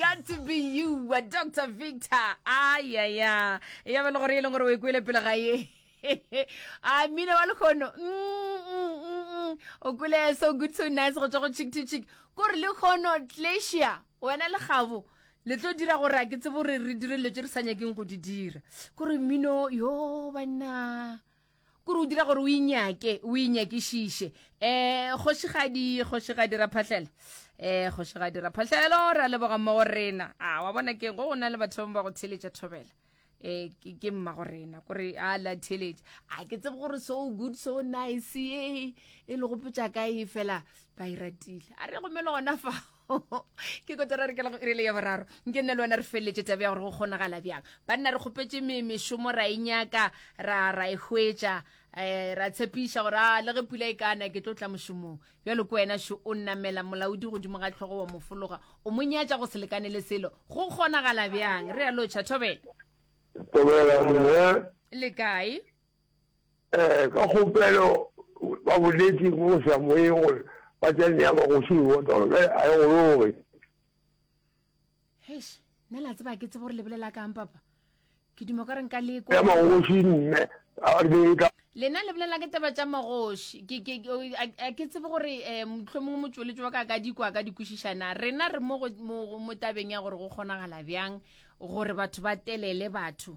got to be you wa dr victor ayaya ya ba le gore e leng gore o e kwele pele ga ye a mmine wa lekgono mm, mm, mm, o kwele so good so nice go tswa go chick to chick kore lekgono tlesia wena le gabo le tlo dira gore a ke tsebo gore re dire dilo tse re sa nyakeng go di dira kore mmino yo banna Kore o dira gore o inyake, o inyakišiše. Eh, kgošigadi, kgošigadi Raphahlela. Eh, kgošigadi Raphahlelo, ra leboga mmago rena. A, wa bona keng, go na le batho ba go theletša thobela. Eh, ke, ke mmago rena, kore a la theletša. A, ke tsebe gore so good, so nice, e, e le gopotša ka e fela ba e ratile. A re gomelo gona fa. ke kotara re kela go irele ya boraro nke nna le wena re feleletse tabe ya gore go kgonagala bjang banna re kgopetse mešomo ra e nyaka ra ra e hwetša um ra tshepiša gore a le ge pula e kana ke tlo tla mošomong bjalo ko wena šo o nnamela molaodi godimo ga tlhogo wa mofologa o mo nyatša go se lekane le selo go kgonagala bjang re ya lotšha thobela tobela le kae Ee, ka kgopelo ba boletše mo go sa moyeng gore ba tla nea magoši lebota gore bjale a e gologe. Heish, nna la tseba ke tseba gore lebelela kang papa ke dimo ka re nka le kwa ya magoši mme a re e ka lena le bolela ke taba tša magoši a ke tsebe gore um eh, motlho mongwe motsweletso wa ka ka dikwa ka dikwešišana rena re mo tabeng ya gore go kgonagala bjang gore batho ba telele batho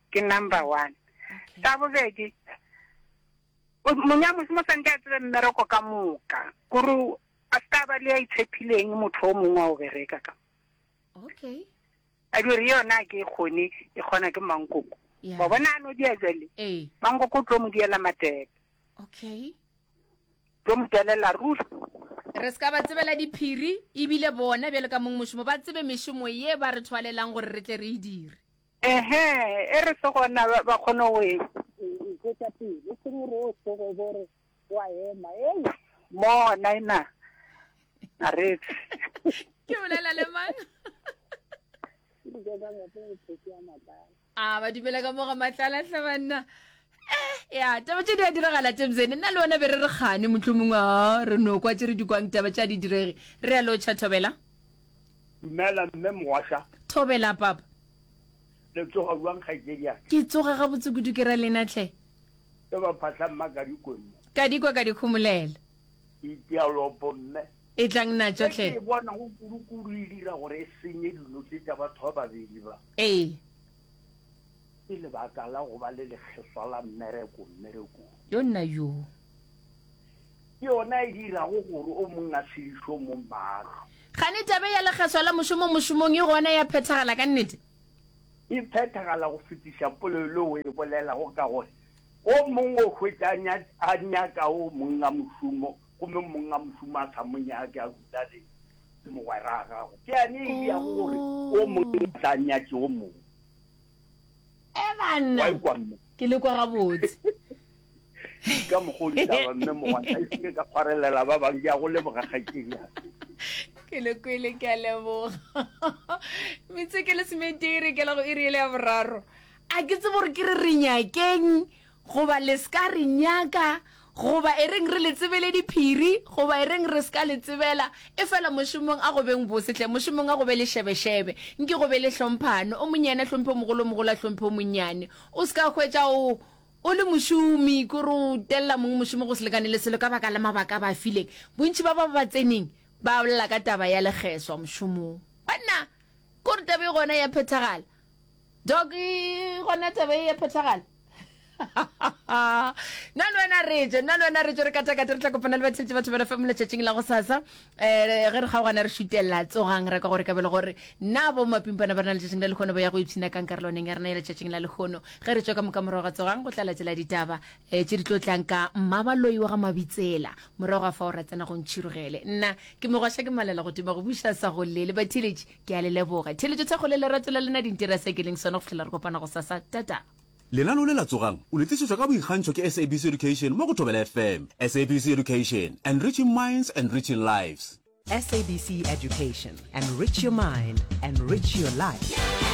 ke number one. Sa bobedi, monyamosi mo swanke a tsebe mmereko ka moka, kore a se ka ba le ya itshepileng motho o mongwe wa o bereka ka. Okay. A dire yona ke e kgone, e kgona ke mankoko. Yeah. Wa bona ano dia jale. Eh. Mankoko o tlo mo diela matebe. Okay. Tlo mo telela ruri. re se ka ba tsebela diphiri ebile bona bjale ka mong mošomo ba tsebe mešomo ye ba re thwalelang gore re tle re e dire Ehe, e re se gona ba, ba kgone go e. Ipotša pele, e seng gore o tsoge bo re wa ema. Ei, mo naina a re Ke bolela le mang? Ke diketsa ngwape go tsheki ya matlala. A ba dumela ka mo ga matlala hle banna. ya taba tše di a diragala temsene nna le wena be re re kgane mohlomongwe a re no kwa tše re di kwang taba tša di direge re ya lotšha thobela dumela mme mogwasha thobela papa le tsoga bjang kgaitsedia ke tsoga gabotse kudu ke ra lena tlhe ke ba phahla mma ka dikone ka dikwa ka dikhomolela itialopo mme e tlang na tsotlhe ke bona go kudu kudu e dira gore e senye dilo tse tsa batho ba babedi ba ee Ke lebaka la go ba le lekgeswa la mmereko mmerekong. Yo nna yoo. Ke yona e dirago gore o mong a sedišwe mo maahlo. Gane taba ya lekgeswa la mošomo mošomong e gona ya phethagala ka nnete? E phethagala go fetiša polelo le o e bolelago ka gore o mong o hwetša a nyaka o mong a mošomo Gomme mong a mo šoma a sa mo nyake, a dula le, le mogwera a gago. Ke yane e diago gore o mong o tla nyatše o mong. E banna! Wa ikwa mme? Ke le kwa gabotse. Ka mokgwa o ditaba, mme mogwantha, e se ke ka kgwarelela ba bang. Ke a go leboga, kgaetšedi ya ka. Ke le kwele, ke a leboga. Metseke le semeteri, ke la go iri ele ya boraro. A ke tsebe gore ke re re nyakeng Goba le s'ka re nyaka, goba e reng re le tsebele diphiri, goba e reng re s'ka le tsebela, efela mošomong a go beng bose hle, mošomong a go be le šebešebe, nke go be le hlomphano, o monnyane a hlomphe o mogolo, o mogolo a hlomphe o monnyane. O s'ka hwetša o, o le mošomi, ke gore o telela mongwe mošomo go se lekane le selo ka baka la mabaka a ba a fileng. Bontši ba bao ba tseneng ba bolela ka taba ya legeswa mošomong. Banna! Ke gore taba e gona ya phethagala. Doc, gona taba e ya phethagala? nna le wena reje nna le wena reje re katakate re tla kopana le batheletše batho bana fm letšatšing la go sasa um eh, ge re kgaogana re šutelela tsogang ra ka gore ka bele gore na bo mapimpana ba rena letšatšing la lekgono ba ya go ipshina kang karolwaneng ya rena ya letšatšing la lekgono ge re tswa ka moka morago ga tsogang go tla latela ditaba um eh, tše di tlo tlang ka mmabaloi wa ga mabitsela morago ga fa o ra tsena go ntšhirogele nna ke megwasha ke malela go tima go buša sa go lele batheletše Ke a le leboga. Theeletšo thekgo le lerato la lena di ntira se ke leng sona go fihlela re kopana gosasa. Tata. Lenaneo le la Tsogang! o le tlišetšwa ka boikgantšho ke SABC Education mo go Thobela FM. SABC Education, Enriching Minds, Enriching Lives. SABC Education, Enrich your mind, enrich your life.